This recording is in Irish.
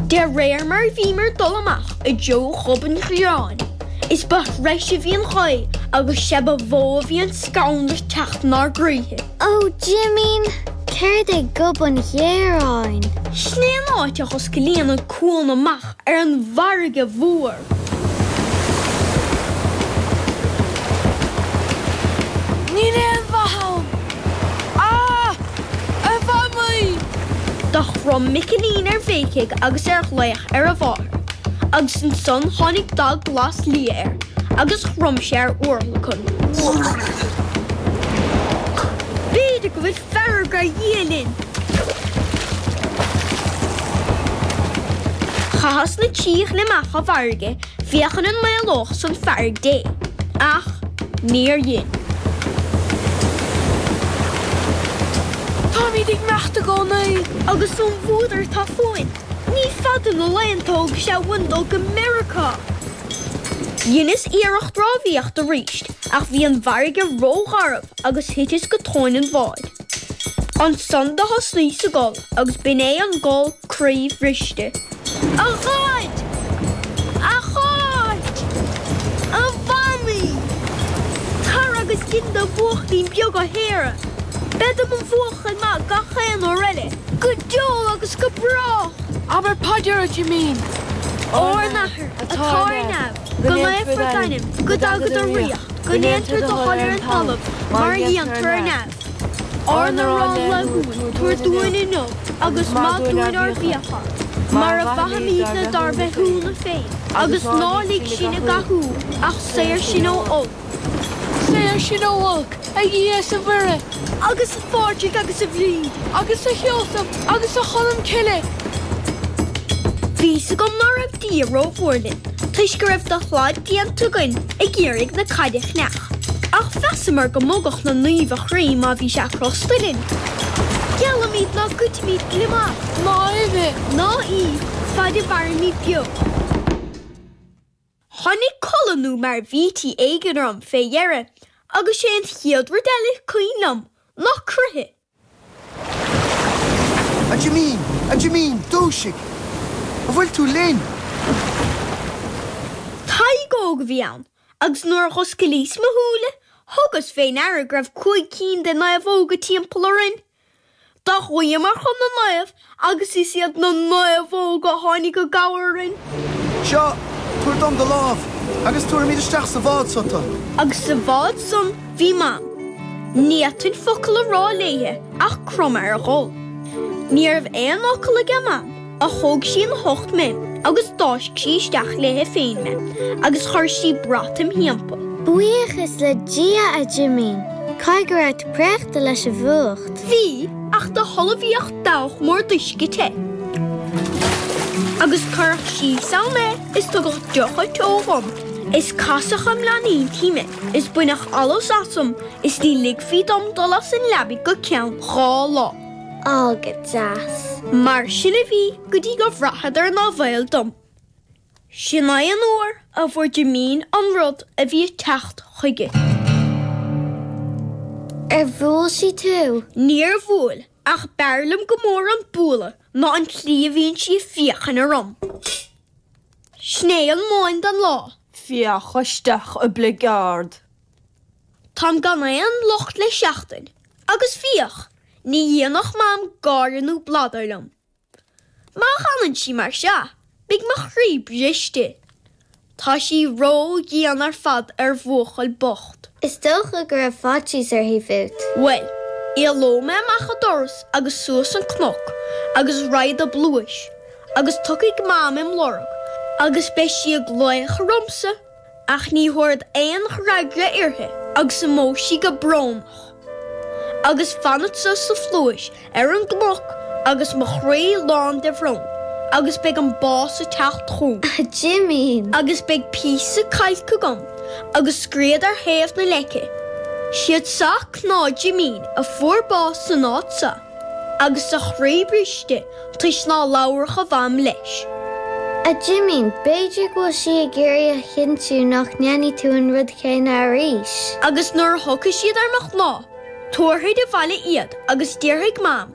De réir mar a bhíomar dul amach i dtreo Ghob an Ghéaráin, is ba threise a bhí an ghaoth agus sea ba mhó a bhí an scanradh ag teacht inár gcroíthe. Ó, Jimín, céard é Gob an Ghéaráin? Sin é an áit a dh'oscailíonn an cuan amach ar an bhfarraige mhór. Níl aon mhaith ann. A! A Mhamaí! Do chrom Micilín ar bhéicigh agus ar ghlaoch ar a mháthair, agus ansan tháinig dath glas liath air agus chrom sé ar urlacan. B'fhéidir go bhfuil fearg ar Dhia linn! Chaitheas na trí ghliomach i bhfarraige féachaint an maolódh san fearg Dé, ach níor dhein. Táimíd ag imeacht i gcónaí. Agus an fuadar atá fúinn, ní fada na laethanta a thógfadh sé uainn dul go Meiriceá. Dheineas iarracht rámhaíocht arís, ach bhí an fharraige ró-gharbh. agus thiteas go tóin an bháid. Ansan do thosnaíos ag gol agus b'in é an gol croíbhriste. A Dhaid! A Cháit! A Mhamaí! Tar agus dein do bhuachaill beag a shaoradh. Bead i mo bhuachaill maith gach aon uair eile. Go deo agus go brách! Abair paidir, a Jimín, ár n-athair atá ar neamh. Go naofar d'ainm, go dtagaidh do ríocht, go ndéantar do thoil ar an talamh mar a dhéantar ar neamh. Ár n-arán laethúil tabhair dúinn inniu agus maith dúinn ár bhfiacha, mar a mhaithimídne dár bhféichiúna féin, agus ná lig sinn i gcathú ach saor sinn ó. Saor sinn ó olc, a Dhia is a Mhuire, agus a Phádraig agus a Bhríd, agus a Sheosamh agus a Cholm Cille. Bhí a fhios agam ná raibh Dia rómhór linn toisc go raibh dúshlán déanta againn ag iarraidh na caide a chreach, ach mheasamar go mbogfadh na naoimh a chroí má bhí sé crosta linn. Geallaimid ná goidfimid gliomach. Ná uibhe, ná iasc, fad a mhairimid beo. Tháinig codladh nó mairbhití éigin orm fé dheireadh agus sé an chéad rud eile cuimhin liom ná croitheadh. A Jimín! A Jimín! Dúisigh! An bhfuil tú linn? Tadhg Óg a bhí ann agus nuair a dh'oscailíos mo shúile thugas fé ndeara go raibh cúig cinn de naomhóga timpeall orainn. Do ghuíomar chun na naomh agus is iad na naomhóga a tháinig i gcabhair orainn. Seo, tabhair dom do lámh agus tabharfaimíd isteach sa bhád so tu. Agus sa bhád san bhí Mam. Ní fhéadfainn focal a rá léithe ach cromadh ar ghol. Ní raibh aon fhocal age Mam. Do thóg sí ina hucht mé agus d'fháisc sí isteach léithe féin mé agus chuir sí brat im thímpall. Buíochas le Dia a Jimín, caithfidh go raibh tú préachta leis an bhfuacht. Bhí, ach do h-ullmhaíodh dabhach mór d'uisce te agus cuireadh síos ann mé is tugadh deocha teo dhom is casadh i bplaincéidí mé is baineadh allas asam is ní ligfí dom dul as an leabaidh go ceann dhá lá. Ó go deas. Mar sin a bhí go dtí go mbraitheadar nár bhaol dom. Sin é an uair a fuair Jimín an rud a bhí ag teacht chuige. Ar bhuail sí tú? Níor bhuail, ach b'fhearr liom go mór an bualadh ná an tslí a bhíonn sí ag féachain orm. Ó mhaidin lán an lae. Féach isteach i mbligeard. Táim gan aon locht le seachtain, agus féach! Ní dhéanfadh Mam gáire nó bladar liom. Má leanann sí mar seo, beidh mo chroí briste. Tá sí ró-dhian ar fad ar bhuachaill bocht. Is dócha go raibh faitíos uirthi fút. Bhuel, éalóidh mé amach an doras agus suas an cnoc agus raghad i bpluais agus tiocfaidh Mam im' lorg agus beidh sí ag glaoch ormsa. Ach ní thabharfad aon fhreagra uirthi agus imeoidh sí go brónach. Agus fanfadsa sa phluais ar an gcnoc agus mo chroí lán de bhrón. Agus beidh an bás ag teacht chugam. A Jimín! Agus beidh píosa cailc agam agus scríobhfad ar thaobh na leice, 'Siad seo cnámha Jimín a fuair bás san áit seo. Agus a chroí briste toisc ná labharfadh a mham leis. A Jimín, b'fhéidir go bhfuil sí ag iarraidh a chinntiú nach ndéanfaidh tú an rud céanna arís. Agus nuair a thiocfaidh siad ar mo chnámh, tabharfaid abhaile iad agus déarfaidh Mam,